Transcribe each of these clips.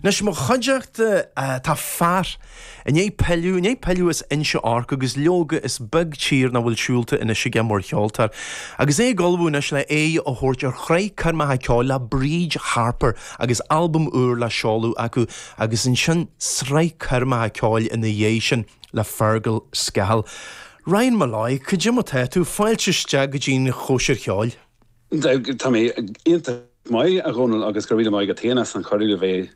Anois, a chuideachta, tá fear i ndiaidh pilleadh, i ndiaidh pilleadh as Inse Orc, agus leoga, is beag tír nach bhfuil siúlta anois aige mar cheoltóir, agus é ag ullmhú anois le aghaidh a thabhairt ar shraith coirmeacha ceoil le Bríd Harper agus albam úr le seoladh acu, agus ansin sraith coirmeacha ceoil ina dhiaidh sin le Fergal Scahill. Ryan Molloy, cad é mar tá tú? Fáilte isteach go dtí'n chóisir cheoil. Tá mé iontach maith, a Dhónaill, agus go raibh míle maith agat féin as an cuireadh a bheith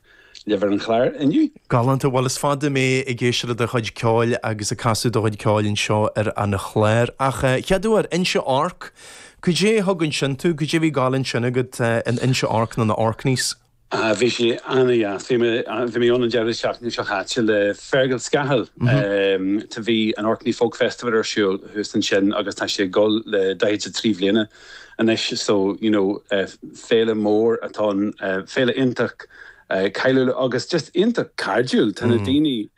libh ar an chlár inniu. Galánta. Bhuel, is fada mé ag éisteacht le do chuid ceoil agus ag casadh do chuid ceoil anseo ar an chlár. Ach chéaduair, Inse Orc, cad é a thug ansin tú? Cad é a bhí ag gabháil ansin agat in Inse Orc nó na Orkneys? Ah bhí sé an-deas. Bhí mé, bhí mé ann an deireadh seachtaine seo chaite le Feargal Scahill. Tá, bhí an Orkney Folk Festival ar siúl thuas ansin agus tá sé ag dul le daichead 's a trí bhliana anois so you know féile mór atá ann, féile iontach cailiúil agus just iontach cairdiúil. Tá na daoine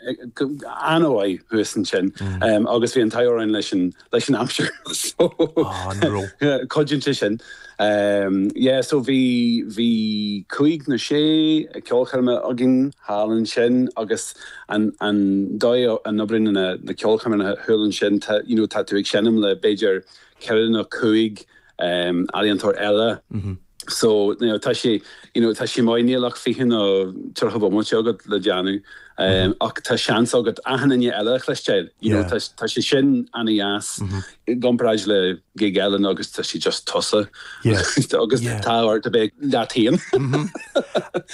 an-mhaith thuas ansin agus bhí an t-ádh orainn leis an. leis an aimsir so Ah, an raibh? Cuidíonn sé sin. Yeah so bhí bhí cúig nó sé ceolchoirme againn thall ansin agus an an dóigh a n-oibríonn na na ceolchoirme thall ansin tá you know tá tú ag seinm le b'fhéidir ceithre nó cúig ealaíontóir eile so tá sé you know tá sé mairnéalach fiche nó tríocha bomaite agat le déanamh ach tá seans agat achan duine eile a chloisteáil you know tá tá sé sin ana dheas i gcomparáid le gig eile nó agus tá sé just tusa agus tá ort a bheith leat féin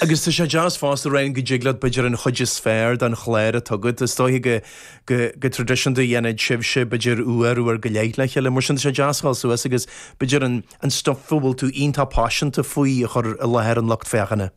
agus tá sé deas fosta Ryan go dtig leat b'fhéidir an chuid is fearr den chlár a thugann tú is dóigh go go traidisiúnta dhéanfadh sibhse, b'fhéidir, uair, uair go leith le chéile. Mar sin, tá sé deas a dhul suas agus, b'fhéidir, an, an stuif a bhfuil tú iontach paiseanta faoi a chur i láthair an lucht féachana.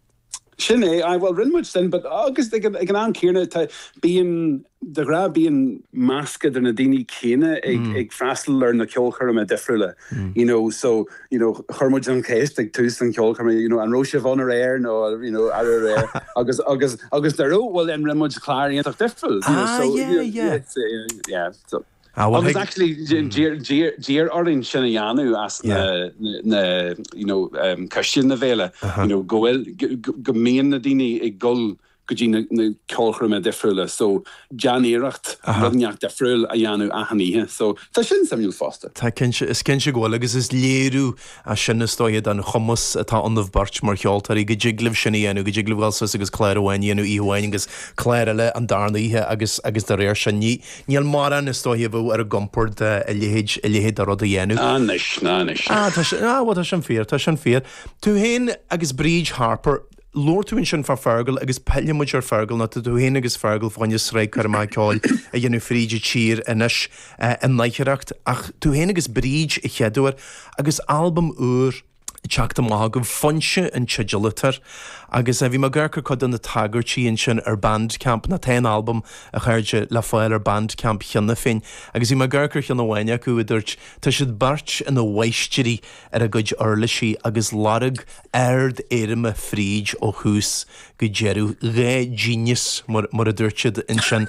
Sin é, aye, bhuel, rinne muid sin, but, agus ag an, ag an am céanna, tá, bíonn, de ghnáth, bíonn. meascán de na daoine céanna ag, ag freastal ar na ceolchoirme difriúla. You know, so, you know, chuir muid an cheist ag tús an cheolchoirme, you know, an raibh sibh ann aréir nó, you know, arú aréir? Agus, agus, agus má raibh, well, then rinne muid clár iontach difriúil, you know, so, you know, yeah, yeah, it's, uh, yeah, so. Ah, well, Agus thig- actually, dí- dí- dí- iarradh orainn sin a dhéanamh as na, na, you know, um, coistí na bhféile, you know, go bhfuil, go- go- go mbíonn na daoine ag dul go dtí na ceolchoirmeacha difriúla so déan iarracht rud neach difriúil a dhéanamh achan oíche so tá sin suimiúil fosta. Tá cinnte, is cinnte go bhfuil agus is léiriú as sin is dóiche den chumas atá ionaibh beirt mar cheoltóirí go dtig libh sin a dhéanamh, go dtig libh ghoil suas agus clár amháin a dhéanamh oíche amháin agus clár eile an darna oíche agus agus de réir sin ní níl morán is dóiche a bheadh ar a gcompord a leithéid a leithéid de rud a dhéanamh. Ah anois, ah anois. Ah tá sin, ah bhuel tá sin fíor, tá sin fíor. Tú féin agus Bríd Harper, Labhair tú ansin fá Fergal agus pillfidh muid ar Fergal nó tá tú féin agus Fergal fá choinne sraith coirmeacha ceoil a dhéanamh fríd an tír anois in aichearracht ach tú féin agus Bríd a cheadúair agus albam úr ag teacht amach agaibh, Foinse an teideal atá air agus bhí mé ag amharc ar cuid de na tagairtí ansin ar Bandcamp, an t-albam, a chairde, le fáil ar Bandcamp cheana féin agus bhí mé ag amharc ar cheann amháin acu a dúirt, tá siad beirt ina mháistirí! ar a gcuid uirlisí agus lorg ardéirime fríd ó thús go deireadh. An genius, mar a dúirt siad ansin.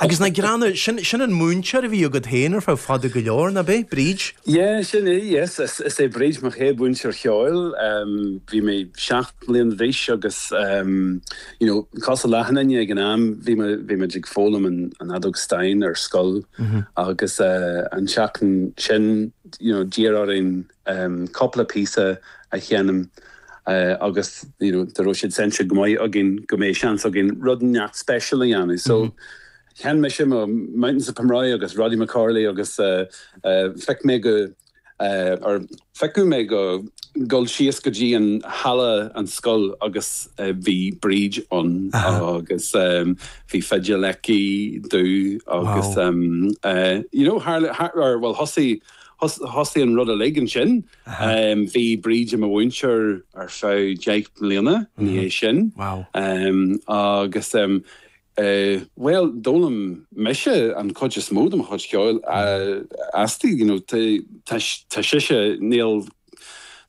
Agus ar ndóighe, sin, sin an múinteoir a bhí agat féin ar feadh fada go leor, nárbh é? Bríd? Yeah, sin í, yes, is é Bríd mo chéad mhúinteoir cheoil. Bhí mé seacht mbliain d'aois agus, you know, caoga leathanaigh ag an am, bhí mé, bhí muid ag foghlaim an fheadóg stáin ar scoil agus an tseachtain sin you know d'iarr orainn cúpla píosa a sheinm agus you know dá raibh siad seinnte go maith againn go mbeidh seans againn rud ineacht special a dhéanamh so sheinn mise mo Mountains of Pomeroy agus Roddy McCorley agus feic mé go or feiceadh mé go dul síos go dtí an halla an scoil agus bhí Bríd ann agus bhí fidil aici domh agus you know tharla bhuel thosaigh thosaigh an rud uilig ansin bhí Bríd i mo mhúinteoir ar feadh deich mbliana ina dhiaidh sin agus bhuel d'fhoghlaim mise an chuid is mó de mo chuid ceoil uaithi you know tá tá sise níl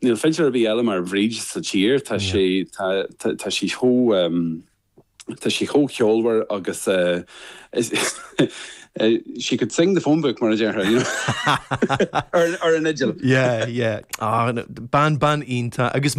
níl fidléir ar bith eile mar Bhríd sa tír tá sí tá sí chomh Tá sí chomh ceolmhar agus she could sing the phone book mar a déarfá you know ar an fhidil. Yeah, yeah. Ah, bean, bean iontach agus.